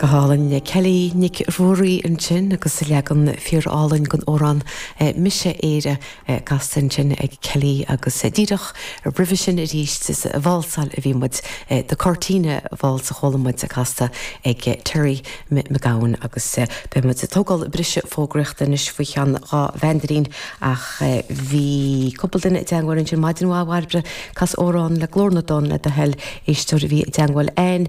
Go hálainn Kelly Nic Ruairí ansin agus leagan fíorálainn den amhrán 'Mise Éire' casta ansin ag Kelly agus díreach roimhe sin arís ag válsáil a bhí muid, 'The Cortina Waltz' a chuala muid casta ag Terry McGowan agus beidh muid ag tógáil briseadh fógraíochta anois faoi cheann dhá mheandairín ach bhí cúpla duine i dteangmháil ansin maidin mhaith Bhairbre, cas amhrán le Glór na dTonn le do thoil, éisteoir a bhí i dteangmháil linn.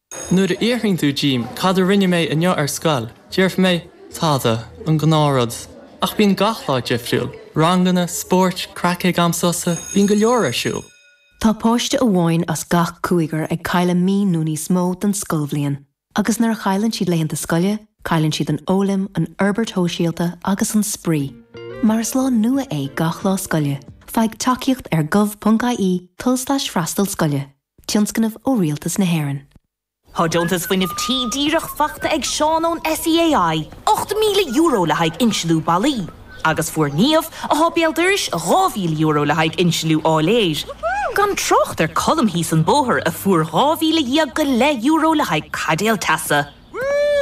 Nuair a fhiafraíonn tú díom cad a rinne mé inniu ar scoil, déarfaidh mé, tada, an gnáthrud. Ach bíonn gach lá difriúil, ranganna, spóirt, craic ag am sosa, bíonn go leor ar siúl. Tá páiste amháin as gach cúigear ag cailleadh mí nó níos mó den scoilbhliain agus nuair a chailleann siad laethanta scoile, cailleann siad an fhoghlaim, an fhorbairt shóisialta agus an spraoi. Mar is lá nua é gach lá scoile, faigh tacaíocht ar gov.ie, tulslais freastal scoile. Tionscnamh ó Rialtas na hÉireann. Tá deontas fuinnimh tí díreach faighte ag Seán ón SEAI, €8,000 le haghaidh insliú ballaí, agus fuair Niamh, a thá béal dorais, €2,000 le haghaidh insliú áiléir. Gan trácht ar Cholm thíos an bóthar, a fuair €12,000 go leith le haghaidh caidéal teasa.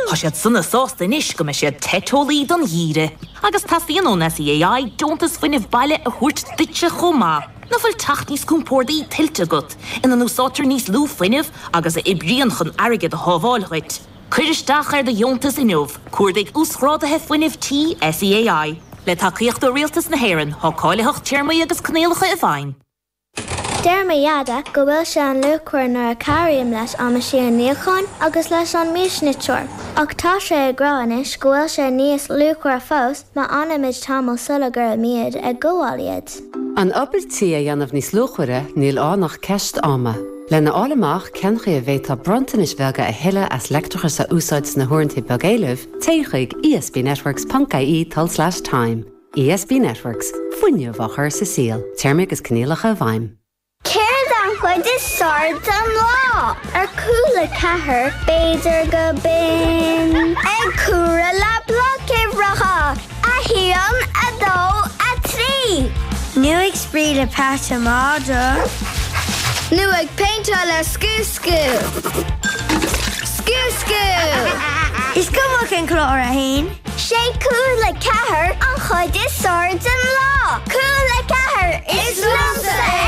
Tá siad sona sásta anois go mbeidh siad te teolaí don gheimhreadh agus teastaíonn ón SEAI deontas fuinnimh baile a thabhairt duitse chomh maith. Nach bhfuil teach níos compórdaí tuillte agat, ina n-úsáidtear níos lú fuinnimh agus a oibríonn chun airgead a shábháil dhuit? Cuir isteach ar do dheontas inniu, Cuardaigh Uasghrádaithe Fuinnimh Tí SEAI. Le tacaíocht ó Rialtas na hÉireann, tá cáilitheacht téarmaí agus coinníollacha i bhfeidhm. Deir mo Dheaide go bhfuil sé an-luachmhar nuair a chabhraím leis an meaisín níocháin agus leis an miasniteoir. Ach tá sé ag rá anois go bhfuil sé níos luachmhaire fós má fhanaimid tamall sula gcuirimid ag gabháil iad. An obair tí a dhéanamh níos luachmhaire níl ann ach ceist ama. Lena fháil amach cén chaoi a bhféadfá bronntanais bheaga a thuilleadh as leictreachas a úsáid sna huaireanta beag éilimh, téigh chuig ESBNetworks ponc ie tulslais time. ESB Networks, Fuinneamh á chur sa saol, Téarmaí agus coinníollacha i bhfeidhm. Céard an chuid is fearr den lá? Ar Cúla4, b'fhéidir gurb in ag comhaireamh le bloic uimhreacha, a haon, a dó, a trí. Nó ag spraoi le peata madra. Nó ag péinteáil le scúscú. Scúscú! Is cuma cén clár atá ann. Sé Cúla4 an chuid is fearr den lá. Cúla4 is liomsa é!